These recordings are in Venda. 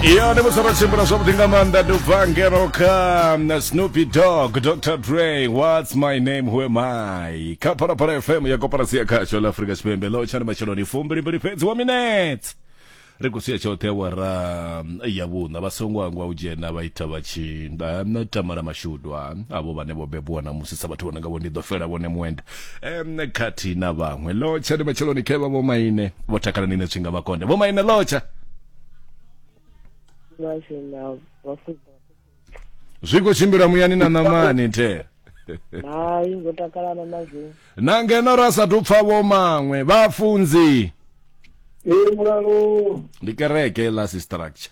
iyo ndi musi ro tshimbila zwavhuḓi nga maanḓa ndi ubva ngeno kha na snoopy dog dr dre whats my name who am i kha phalaphala fm ya koporasi ya khasho la afrika tshipembe ḽo tshani matsheloni fumbilimbili fhedzi wa minetse ri khou sia tshoṱhe awara ya vhuṋa vha songo angwa u dzhena vha ita vha tshi na tamala mashudwa avho vhane vho bebiwa na musi sa vhathu vho nanga vho ndi ḓo fela vhone muenda em khathihi na vhaṅwe lotsha ndi matsheloni khevha vho maine vho takala nine tshinga vha konde vho maine lotsha vhashe na vhafunzi zwi khou tshimbila muyani na ṋamani the hayi ngo takalana na zwo na ngeno ra sathu pfa vho maṅwe vhafunzi ee mulalo ndi kereke la si structure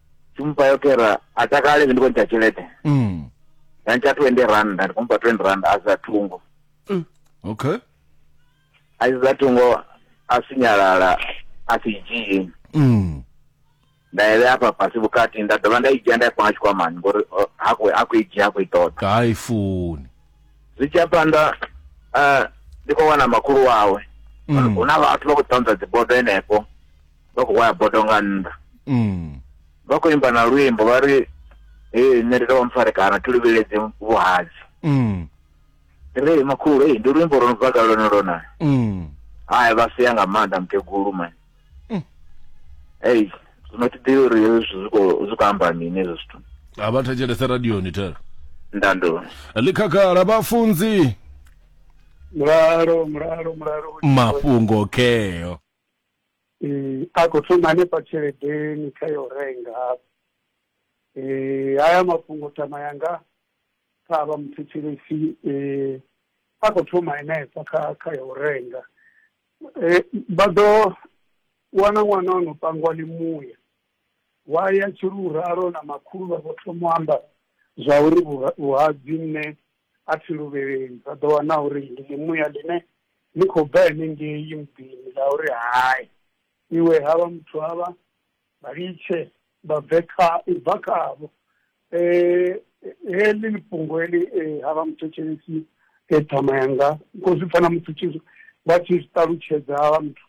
Ndi mufha yo kera a takale ndi khou ntsha tshelede. Mm. Nda ntsha 20 rannda ndi khou mufha 20 rannda a sa thungo. Okay. A si sa thungo a sinyalala a si dzhii. Mm. Nda ya vhea hafha fhasi vhukati nda dovha nda i dzhia nda i panga tshikwamani ngori o, ha khou ha khou i dzhia ha khou i ṱoḓa. Ka i funi. Zwi tshi ya phanḓa eh, ndi khou wana makhulu wawe. Mm. Hu na vhathu vha khou ṱanza dzibodo henefho. vha khou waya bodo nga nnḓa Mm. vha khou imba na luimbo vha ri ee nṋe ndi tovha mpfarekana thi luvheledzi vhuhadzi Mm. ndi ri makhulu ei ndi luimbo lwo no bva kale lone lona Mm. hai vha sia nga maanḓa mukegulu mani Mm. ei zwino thi ḓivhi uri hezwi zwithu zwi khou- zwi khou amba mini hezwi zwithu a vha thetshelese radioni thera ndando ḽi khagala vhafunzi mulalo mulalo mulalo mafhungo kheo Eh, a khou thoma hanefha tsheledeni kha yo renga hafha eh, haya mafhungo tama yanga kha avha muthetshelesi eh, a khou thoma henefha kha kha yo renga eh, vha ḓo wana ṅwana o no pangwa limuya wa ya tshiruralo na makhulu vha vho thoma u amba zwa uri vhuhadzi nṋe a thi luvheleli vha ḓo wana uri ndi ḽimuya ḽine ḽi khou bva henengei muḓini ḽa uri hai iwe havha muthu havha vha litshe vha bve kha u bva khavho heḽi ḽi fhungo heḽi havha muthetshelesi ṱhama yanga kho zwi pfha na muthu tshi vha tshi zwi ṱalutshedza havha muthu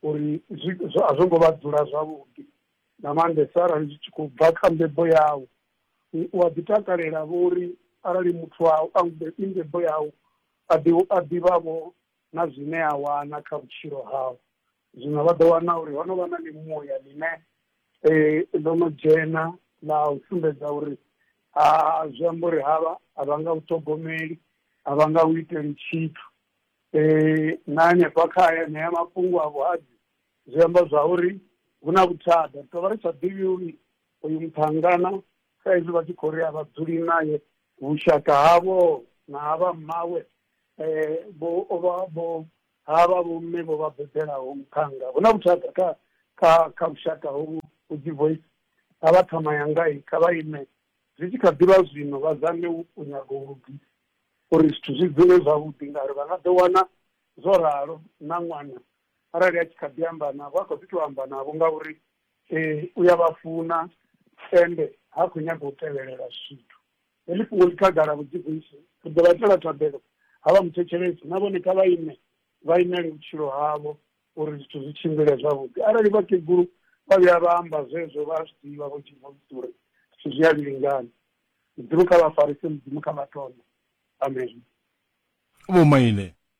uri zwi a zwo ngo vha dzula zwavhuḓi nga maanḓesa arali zwi tshi khou bva kha mbebo yau. u a ḓi takalela vho uri arali muthu wau a mbebo yau a ḓi a ḓivhavho na zwine a wana kha vhutshilo hau zwino vha ḓo wana uri ho no vha na mimuya ḽine ḽo no dzhena ḽa u sumbedza uri a zwi amba uri havha a vha nga u ṱhogomeli a vha nga u iteli tshithu na hanefha kha aya ṋea mafhungo a vhuhadzi zwi amba zwa uri hu na vhuthada ri tovha ri sa ḓivhi uri uyu muṱhangana sa izwi vha tshi khou ri a vha dzuli naye vhushaka havho na ha vha mmawe um vho o vha vho ha vha vho mme vho vha bebelaho muṱhannga hu na vhushaka kha kha kha vhushaka hovhu vho dzi voice a vha ṱhama yanga i kha vha ime zwi tshi kha ḓivha zwino vha zame u nyaga u lugisa uri zwithu zwi dzule zwavhuḓi ngauri vha nga ḓo wana zwo ralo na ṅwana arali a tshi kha ḓi amba navho a kho ḓi to amba navho ngauri Ee, u ya vha funa ende ha khou nyaga u tevhelela zwithu. Heḽi fhungo ḽi khagala vhuḓivhusi. Ri ḓo vha itela thabelo havha muthetshelesi na vhone kha vha ime vha imele vhutshilo havho uri zwithu zwi tshimbile zwavhuḓi. Arali vhakegulu vha vhuya vha amba zwezwo vha a zwi ḓivha Vho Divosi uri zwithu zwi a vhilingana. Mudzimu kha vha farise, Mudzimu kha vha ṱole. Ameni. Vho Maine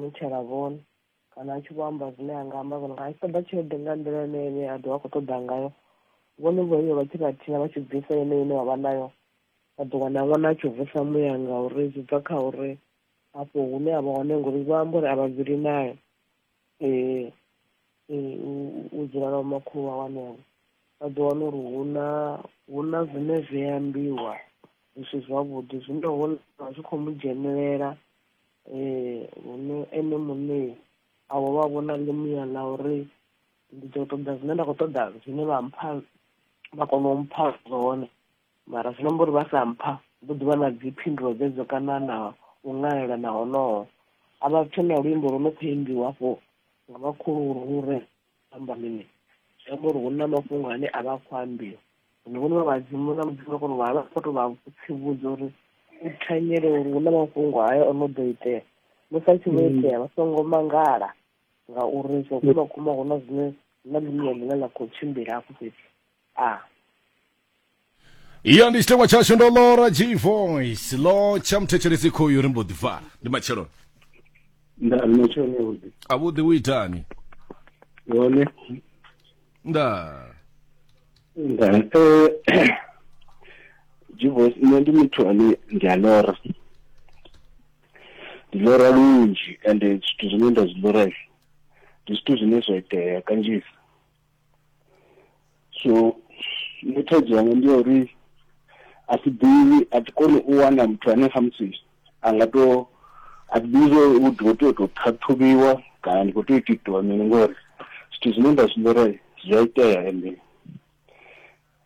mutshela vhone kana a tshi vho amba zwine a nga amba vhone nga a tshi ṱoḓa tshelede nga nḓila ine ene a ḓovha a khou ṱoḓa ngayo vhone vho iyo vha tshi vhathiha vha tshi bvisa ine ine wa vha nayo vha ḓo wana ṅwana a tshi vusa muya nga uri zwi bva kha uri afho hune a vha hone ngori vha amba uri a vha dzuli nayo um u dzula na vhomakhulu wa wanevho vha ḓo wana uri hu na hu na zwine zwi ambiwa zwi si zwavhuḓi zwine hone zwi khou mu dzhenelela ee hune ene muṋe avho vha vhona ḽimuya ḽa uri ndi ḓo ṱoḓa zwine nda khou ṱoḓa zwine vha mpha vha kona u mpha zwone mara zwi namba uri vha sa mpha ndo ḓivha na dzi phindulo dzedzo kana na u ṅalela na honoho a vha tshe na luimbo lwo no khou imbiwa afho nga vhakhulu uri amba mini zwi amba uri hu na mafhungo ane a vha a khou ambiwa zwino vhone vha vhadzimu na mudzimu a kona u vha vha khou tou vha tsivhudza uri u thanyele uri hu na mafhungo hayo o no ḓo itea musi a tshi vho mm. itea vha songo mangala ngauri zwo kuma kuma hu na zwine na ḽiṋea ḽine ḽa khou tshimbila hafho fhethu a iyo ndi tshitengwa tshashu ndo lora g voice lo tsha muthetshelesi khoyu ri mbo ḓi fa ndi matsheloni nda ri matshelo avhuḓi avhuḓi u itani hone nda nda eh, jivos nṋe ndi muthu ane ndi a lora ndi lora lunzhi ende zwithu zwine nda zwi lora ndi zwithu zwine zwa itea kanzhisa so nṋe thaidzo yanga ndi ya uri a si ḓivhi a thi koni u wana muthu ane khamusi a nga to a thi ḓivhi zwo u ḓo tea u tou ṱhaṱhuvhiwa kana ndi khou tea u tou itiwa mini ngori zwithu zwine nda zwi ḽora zwi a itea ende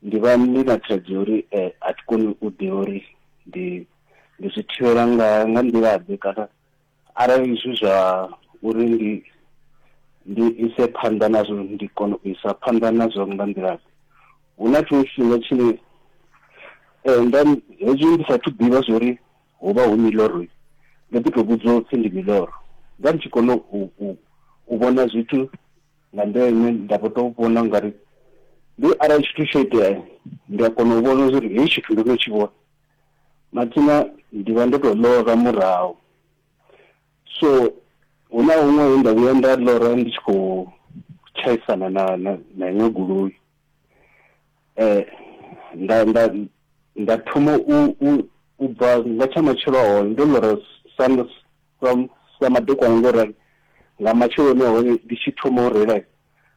ndi vha ndi na thaidzo ya uri um a thi koni u ḓivha uri ndi ndi zwi thivhela nga nga nḓila ḓe kana Arali zwi zwa uri ndi ndi ise phanḓa nazwo ndi kone u isa phanḓa nazwo nga nḓila hu na tshiṅwe tshifhinga tshine eh, nda hezwi ndi sathu ḓivha zwori hu vha hu miloroi ndo ḓi tou vhudzwa upfhi ndi miloro nda ndi tshi kona u, u, u vhona zwithu nga nḓila ine nda vho tou vhona ungari ndi arali tshithu tsho itea ndi a kona u vhona zwori hei tshithu ndo no tshi vhona mathina ndi vha ndo to ḽora murahu so hu na huṅwe he nda vhuya nda ḽora ndi tshi khou tshaisana na na na iṅwe goloi eh nda nda nda thoma u u u bva nga tsha matshelo a hone ndo ḽora sa sa sa madekwana ngo rali nga matsheloni a hone ndi tshi thoma u reila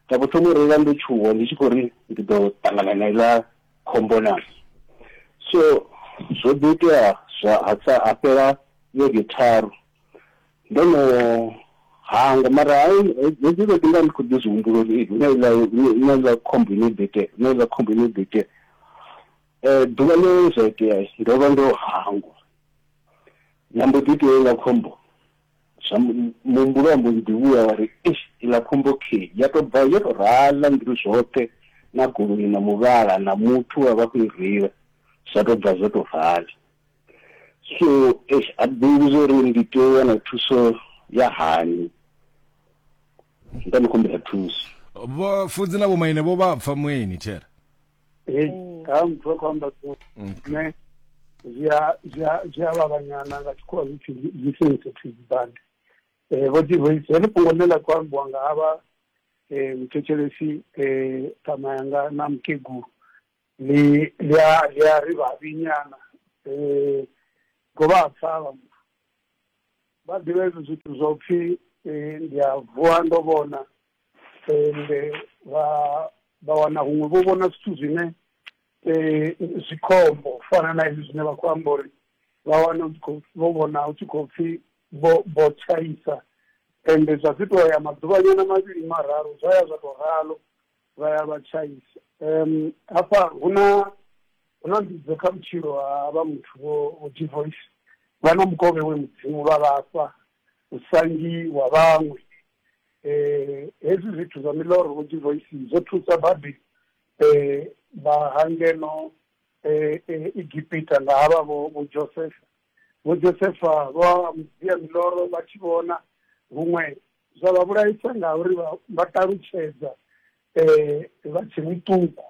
Nda vho thoma u reila ndo tshuwa ndi tshi khou ri ndi ḓo ṱangana na iḽa khombo na. So zwo ḓi itea zwa ha sa ha fhela vhege tharu ndo no hangwa mara hedzi vhege nda ndi khou ḓi zwi humbula uri ee hu na iḽa hu na iḽa khombo ine ḓo itea hu na iḽa khombo ine ḓo itea. Ḓuvha ḽe zwa itea ndo vha ndo hangwa ya mbo ḓi itea heiḽa khombo. zwa mu- muhumbulo wa mbo ḓi vhuya wa ri eish iḽa khombo khei ya to bva yo to rala nḓiri zwoṱhe na goloi na muvhala na muthu wa vha khou i reila zwa to bva zwo to rala so eish a ḓivhi zwo ri ndi tea u wana thuso ya hani nda ni khumbela thuso vho fudzi na vhomaine vho vha pfa mueni thera hei mm. ha muthu a khou amba so mm. ne zwi a vhavhanyana nga tshikhuwa zwi pfi zwi sensitive band um eh, vho divoice heḽi fhungo ḽe ḽa khou ambiwa nga havha um eh, muthetshelesi um eh, ṱama yanga na mukegulu ḽi a ri vhavhinyana um govha ha pfa vha muthu vha ḓivha hezwi zwithu zwa u pfi ndi a vuwa ndo vhona ende vha vha wana huṅwe vho vhona zwithu zwine um zwi khombo u fana na hezwi zwine vha khou amba uri vha wana u khou vho vhona hu tshi khou pfhi vho vho tshaisa ende zwa ḓi tou ya maḓuvhanyana mavhili mararu zwa ya zwa tou ralo vha ya vha tshaisa um hafha hu na hu na mbidzo kha vhutshilo ha vha muthu vho vho divoice vha na mukovhe we mudzimu vha vhafha usangi wa vhaṅwe um hezwi zwithu zwa miḽoro vho divoisi zwo thusa badi um vha hangeno um egipita nga havha vho vho josefa vho josefa vha mudzia miḽoro vha tshi vhona huṅwe zwa vha vhulaisa nga uri vha ṱalutshedza um vha tshe muṱuku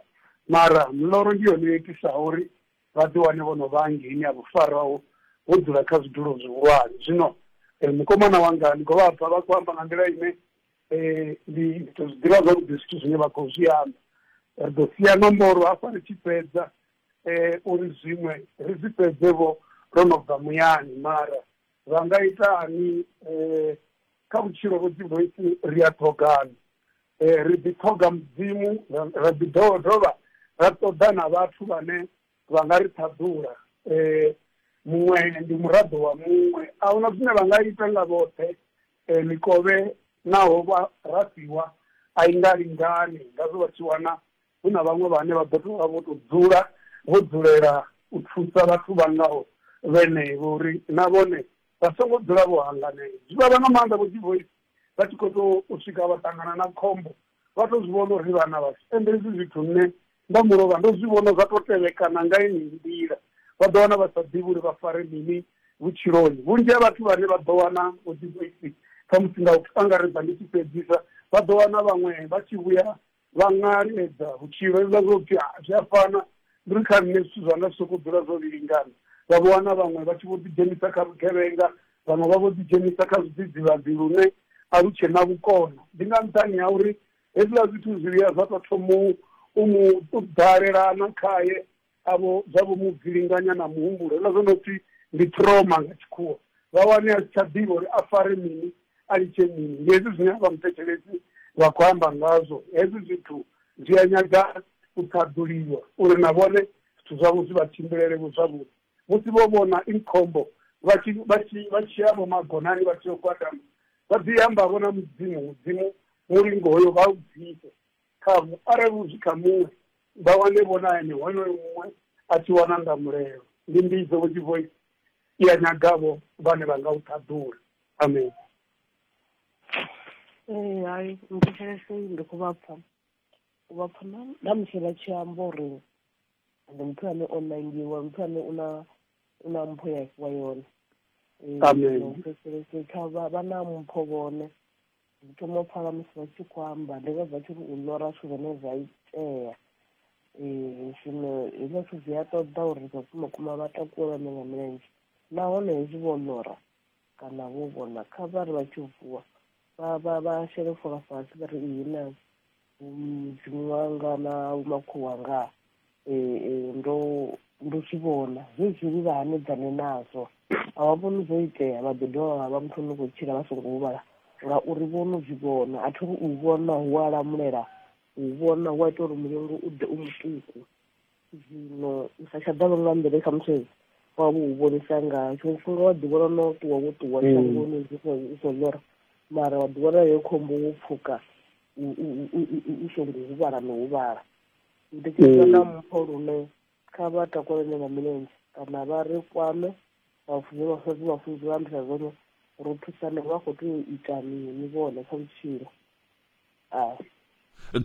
mara miḽoro ndi yone yo itisaho uri vha ḓi wane vho no vha hangeini ha vhufarwa ho ho dzula kha zwidulo zwihulwane. Zwino mukomana wanga ndi khou vha pfa vha khou amba nga nḓila ine ndi tou zwi ḓivha zwavhuḓi zwithu zwine vha khou zwi amba, ri ḓo sia nomboro hafha ri tshi fhedza uri zwiṅwe ri zwi fhedze vho ro no bva muyani mara vha nga ita hani kha vhutshilo vho dzi voice ri a ṱhogana eh, ri ḓi ṱhoga mudzimu ra ḓi dovha dovha ra ṱoḓa na vhathu vhane vha nga ri ṱhaḓula eh, muṅwe ndi muraḓo wa muṅwe a huna zwine vha nga ita nga vhoṱhe eh, mikovhe naho vha rasiwa a i nga lingani ngazwo vha tshi wana Hu na vhaṅwe vhane vha ḓo tou vha vho tou dzula vho dzulela u thusa vhathu vha ngaho vhenevho uri na vhone vha songo dzula vho hanganea. Zwi vhavha nga maanḓa vho Divoisi vha tshi khou tou swika vha ṱangana na khombo vha tou zwi vhona uri vhana vhashu. Ende hezwi zwithu nṋe nda mulovha ndo zwi vhona zwa tou tevhekana nga yeneyi nḓila. Vha ḓo wana vha sa ḓivhi uri vha fare mini vhutshiloni. Vhunzhi ha vhathu vhane vha ḓo wana vho Divoisi khamusi nga u angaredza ndi tshi fhedzisa vha ḓo wana vhaṅwe vha tshi vhuya Vha nga lingedza vhutshilo hezwiḽa zwa u pfi zwi a fana, ndi uri kha nṋe zwithu zwanga zwi sokou dzula zwo vhilingana. Vha vho wana vhaṅwe vha tshi vho ḓidzhenisa kha vhugevhenga, vhaṅwe vha vho ḓidzhenisa kha zwidzidzivhadzi lune a lu tshe na vhukono. Ndi nga nṱhani ha uri hezwiḽa zwithu zwi vhuya zwa tou thoma u mu ḓalelana khae avho zwa vho mu gilinganya na muhumbulo hula zwo no pfi ndi trauma nga tshikhuwa vha wane a si tsha ḓivha uri a fare mini a litshe mini ndi hezwi zwine vha muthetshelesi vha khou amba ngazwo hezwi zwithu zwi a nyaga u ṱhaḓuliwa uri na vhone zwithu zwavho zwi vha tshimbilele vho zwavhuḓi musi vho vhona inkhombo vha tshi vha tshi vha tshi ya vho magonani vha tshi yo gwadama vha ḓi amba vho na mudzimu mudzimu mulingo hoyo vha u bvise Khahu, arali hu zwi kha muṅwe, vha wane vhonani honoyo muṅwe a tshi wana nga mulelo. Ndi mbidzo, vho Tshivhoisi, i a nyaga vho vhane vha nga u ṱhaḓula. Amen. Ee, hai, nthetshelese ndi khou vha pfa. U vha pfa na, na musi vha tshi amba uri ndi muthu ane o nangiwa, muthu ane u na, u na mpho ya fhiwa yone. Ee, Amen. nthetshelese kha vha, vha na mpho vhone. ndi thoma u pfala musi vha tshi khou amba ndi vha vha tshi ri u ḽora zwithu zwine zwa itea um zwino hezwiḽa zwithu zwi a ṱoḓa uri vhafumakuma vha takuwelwane nga milenzhe nahone hezwi vho ḽora kana vho vhona kha vha ri vha tshi vuwa vha shele fola fhasi vha ri iyi na mudzimu wanga na vhumakhulu wanga um ndo ndo zwi vhona zwezwili vha hanedzane nazwo a vha vhoni zwo itea vha ḓo dovha vha muthu no khou tshila vha songo huvhala ngauri vho no zwi vhona a thi ri u vhona hu a lamulela u vhona hu a ita uri mulungu u ḓe u muṱuku zwino u sa tsha ḓa longa nḓele kha muthu wa vhu vhonisa nga tshiṅwe tshifhinga wa ḓi vhona no ṱuwa wo ṱuwa mm. shangoni u so lora mara wa ḓi vhona yo khombo wo pfuka u songo huvhala no huvhala ndi tshi mm. na mpho lune kha vha takulene nga milenzhe kana vha ri kwame vhafunzi vhafunzi vhafunzi vha ambisa zwone ro thusane vha khou tea u ita mini vhone kha vhutshilo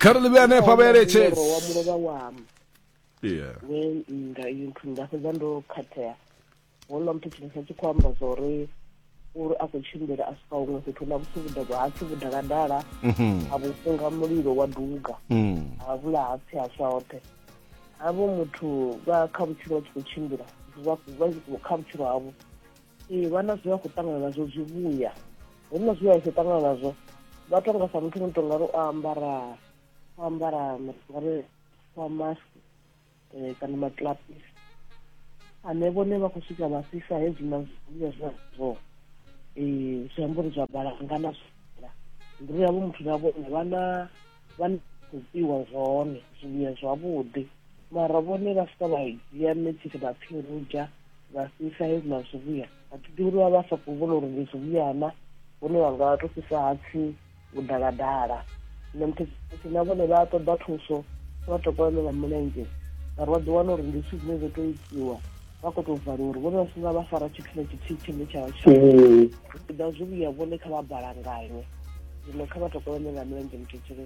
kha ri ḽivhe hanefho a vha eletshedzi wa mulovha wam yeah we nda iyo nthu nda fhedza ndo khathea houḽa muthu tshifhinga tshi khou amba zwa uri uri a khou tshimbila a swika huṅwe fhethu na vhupfi vhudalwa ha pfi vhudaladala mhm. a vhufunga mulilo wa duga mm. ha vhula ha pfi ha swa hoṱhe havho muthu vha kha vhutshilo vha tshi khou tshimbila kha vhutshilo havho ee vha na zwe vha khou ṱangana nazwo zwivhuya hu na zwe vha khou ṱangana nazwo vha tonga sa muthu muthu ngari o ambara o ambara ngari wa mask eh, kana maklapis ane vhone vha khou swika vha fhisa hezwi na zwivhuya zwazwo um eh, zwiambori zwa balanga na zwila ndiri yavho muthu na vhone vha na vha na khou piwa zwone zwivhuya zwavhuḓi mara vhone vha swika vha dzhia metsisi vha phirudzha vha fhisa he na zwivhuya a thi ḓivhi uri vha vha sa khou vhona uri ndi zwivhuya na vhone vha nga to fhisa hatsi u daladala nṋe muthetshisi na vhone vha ṱoḓa thuso vha to kolelela mulenzhe ngauri vha ḓi wana uri ndi zwithu zwine zwo to itiwa vha khou tou valiwa uri vhone vha si nga vha fara tshithu na tshithihi tshine tsha vha tshiḓa zwivhuya vhone kha vha balanganywe zwino kha vha to kolelela mulenzhe muthetshisi